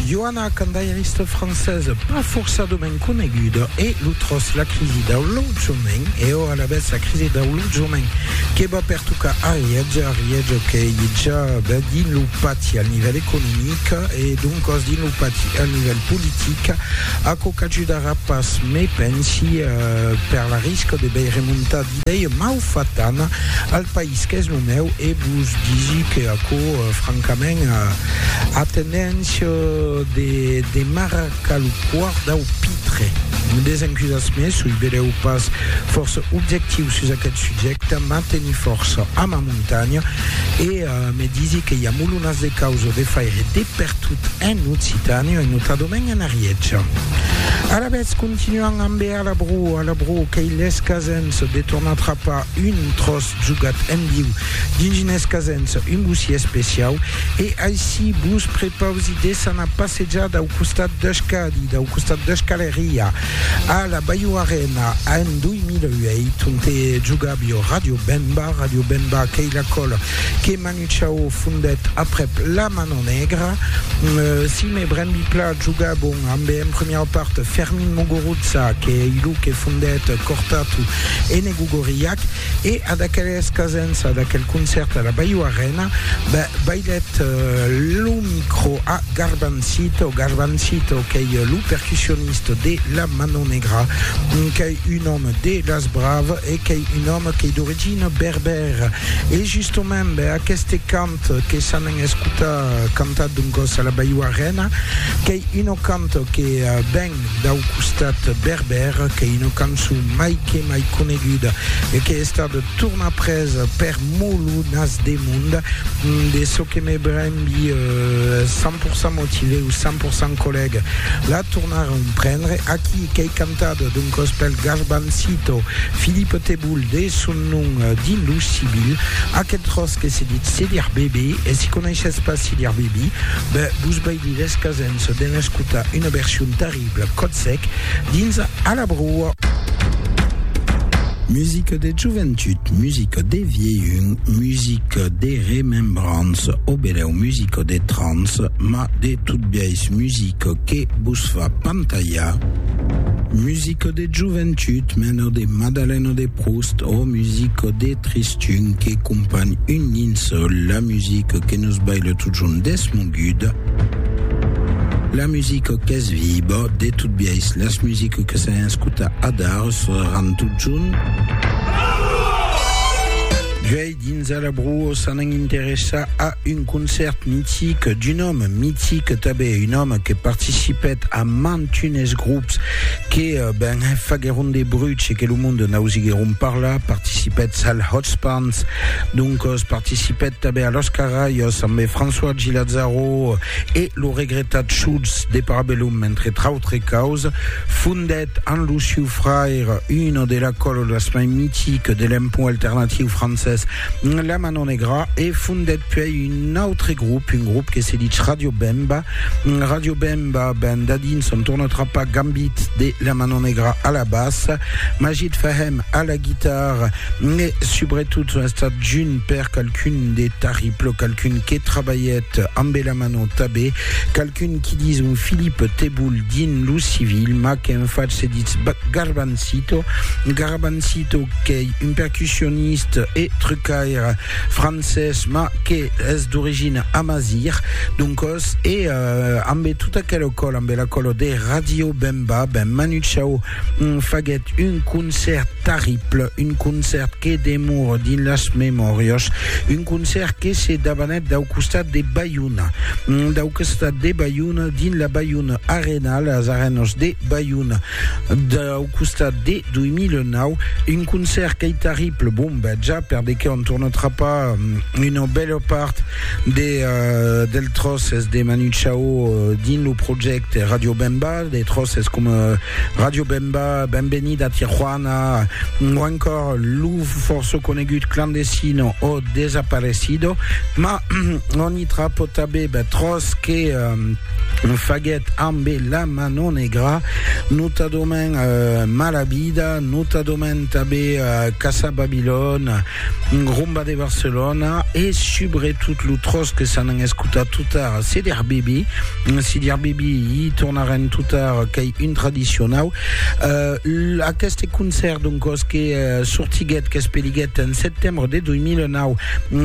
Joana candairista francesa pas forçadament coneguda e lo tròç la crisi dau lotjament e ora alavetz la crisi dau lotjament que va pertocar Ariètge, Ariètge qu'ei ja ben dins lo pati al nivèl economic e doncas dins lo pati al nivèl politic, aquò qu'ajudarà pas, me pensi, per la risca de bèi remontar Dei mau fat d'ana al país qu'es lo meu e vos disi que aquò francament a tendéncia de m'arracar lo poir dau pitre. Desencusatz-me soi beleu pas fòrça objectiu sus aquel subjècte, mas teni fòrça a ma montanha e me disi que i a molonas de causa de faire de pertot en Occitània e notadament en Ariètge. Alavetz, continuam ambe A la bro, a la bro, qu'ei lhes casens de tornar trapar un tròç jogat en viu dins unes casens, un bocí especiau, e aicí vos prepausi desanar a passejar dau costat deth Cadi, dau costat deth Caleria, a la Baio Arena, en 2008, onte jogàvio Radio Bemba, Radio Bemba qu'ei la còl que Chao fondèt aprèp la Mano Negra. Sime Brembi-Pla joga bon ambe en premiau part Fermin Muguruza qu'ei lo que fondèt Cortatu Enegu Gorriak e a d'aqueles casens a d'aquel concèrt a la Baio Arena bailèt lo micro a Garbancito Garbancito qu'ei lo percussionist de la Mano Negra qu'ei un òme de las Braves e qu'ei un òme qu'ei d'origina Ber, e justement, ber aqueste cant que s'anen escotar cantat d'un còs a la Baiuarena, qu'ei una cant que ven dau costat berber, qu'ei una cançon mai que mai coneguda e qu'ei estada tornar pres per Molo Nas de Mond, de çò que me brembi 100% motivé o 100% collègue, la tornaron prendre aquí, qu'ei cantada d'un còs pel Garbancito, Philippe Teboul, de son Non, dins lo civil, aquel tròç que se ditz cedir bebe, e si coneishes pas cedir bebi, ben vos vai de descasens de n'escotar una version terrible, còt sec, dins A la broa. Musica de joventut, musica de vielhun, musica de remembranç, o benèu musica de trans, mas de tot biais musica que vos fa pantalhar, musica de. Joventut, menor de Madaleno de Proust, o musico de Tristun que companh un linçol, la musico que nos baile totjorn desmoguda, la musico qu'es viba, de tot biais las musico que s'an escutat adar seràn totjorn. Dins a la Bruo s'anan interessar a un concèrt mitic d'un òme mitic tanben, un òme que participèt a mantunes grops que ben faguèron de bruch e que lo monde n'ausiguèron parlar, participètz al Hot Spans, doncos participèt tanben a Los Carraios ambe François Gilazzaro e lo regretat Schultz de Parabellum entre trautre causas, fondèt. En lo sieu fraire, una de la cololas mai mitiques de l'empont alternatiu francés, La Mano Negra, e fondèt puèi un autre grop, un grop que se dich Radio Bemba. Radio Bemba, ben dadins son torna trapar Gambit de La Mano Negra a la bassa, Majid Fahem a la guitarra e subretot son estat junt per qualqu'un de Tarriplo, qualqu'un que trabalhèt ambe La Mano Tabé, qualqu'un Qui dis un Philippe Teboul dins lo civil, mas qu'en fach se ditz Garbancito. Garbancito qu'ei un percussioniste e trucaire francés, mas qu'es d'origina amazigh. Doncos, e ambe tota aquela còla, ambe la còla de Radio Bemba, ben Manu Chao, Faguèt un concèrt tarrible, un concèrt que demora dins las memòrias, un concèrt que se dabanèt dau costat de Baiona, dau costat de Baiona, dins la Baiona Arena, las Arenas de Baiona, dau costat de 2009, un concèrt qu'ei tarrible, bon, ben ja, per de qué on torna trapar una bèla part de, del tròces de Manu Chao dins lo projècte Radio Bemba. Des tròces coma Radio Bemba, Benvenida Tijuana o ancòr lo fòrça conegut Clandestino o Desaparecido, ma on i tra potabèb tròç que faguèt ambe La Mano Negra, notadament Mala Vida, notadament tanben Casa Babilòn, Rumba de Barcelona e subretot lo tròç que s'an escutat totar Seder Bibi, Sidir Bibi, i tornarem totar qu'ei un tradicionau. Uh, aqueste concèrt doncòs que uh, sortiguèt, qu'espeliguèt en setembre de 2009,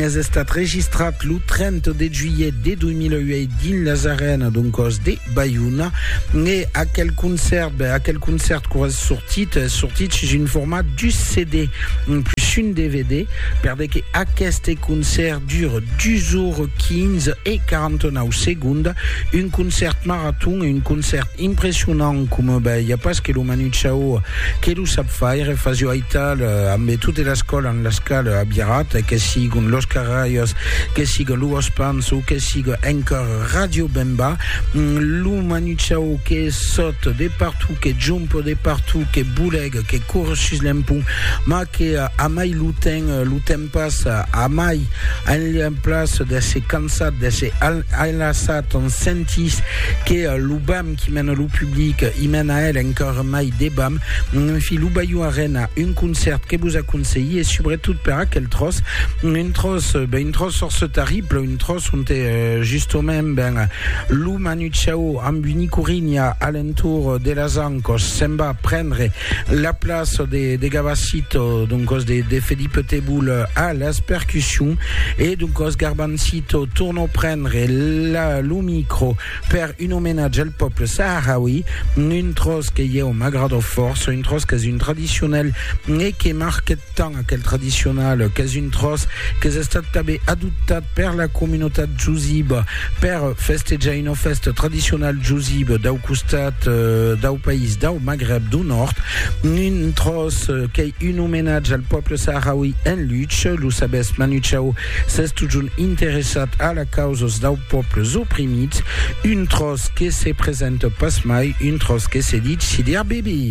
es estat registrat lo 30 de juillet de 2008 dins las arenas doncòs de Baiona e aquel concert aquel concert que es sortit es sortit sus un format du CD plus un DVD per de que aquest concert dure 2 heures 15 et 49 secondes un concert marathon un concert impressionant comme ben il n'y a pas que le Manu Chao que le sap faire Fazio Aital euh, ambe toute la scola en la scala à Birat que sigue l'Oscar Rayos que sigue Louos Pans ou que sigue encore Radio Bemba, lo manuchau que sot de partout, que jump de partout, que bouleg, que cours sus l'empont, ma que a mai lo temps, lo temps passa, a mai en place de se cansat, de se enlaçat, on sentís que lo bam qui mène lo public, i mène a el encara mai de bam. En fi, lo Bayou Arena, un concert que vos aconselhi, e subretot per aquel tros, un tros, ben un tros força terrible, Un tròç onte justament ben lo Manucciau amb un icurinha a l'entorn de las ancòs se'n va prendre la plaça de, de Gavassito, doncòs de, de Felipe Teboul a las percussions e doncòs Garbancito tornò prendre la, lo micro per un omenatge al pòble saharaui, un tròç que ieu m'agradò fòrça, un tròç qu'es un tradicionel e que marquèt tant aquel tradicional qu'es un tròç qu'es estat tanben adoptat per la comunotat jusiba per festejar una fèsta tradicional jusiba dau costat dau país dau Magrèb dau Nòrd, un tròç qu'ei un omenatge al pòble saharaui en luch, lo sabètz Manu Chao, s'es totjorn interessat a la causas dau pòbles oprimits, un tròç que se presenta pas mai, un tròç que se ditz Sidi Arbibi.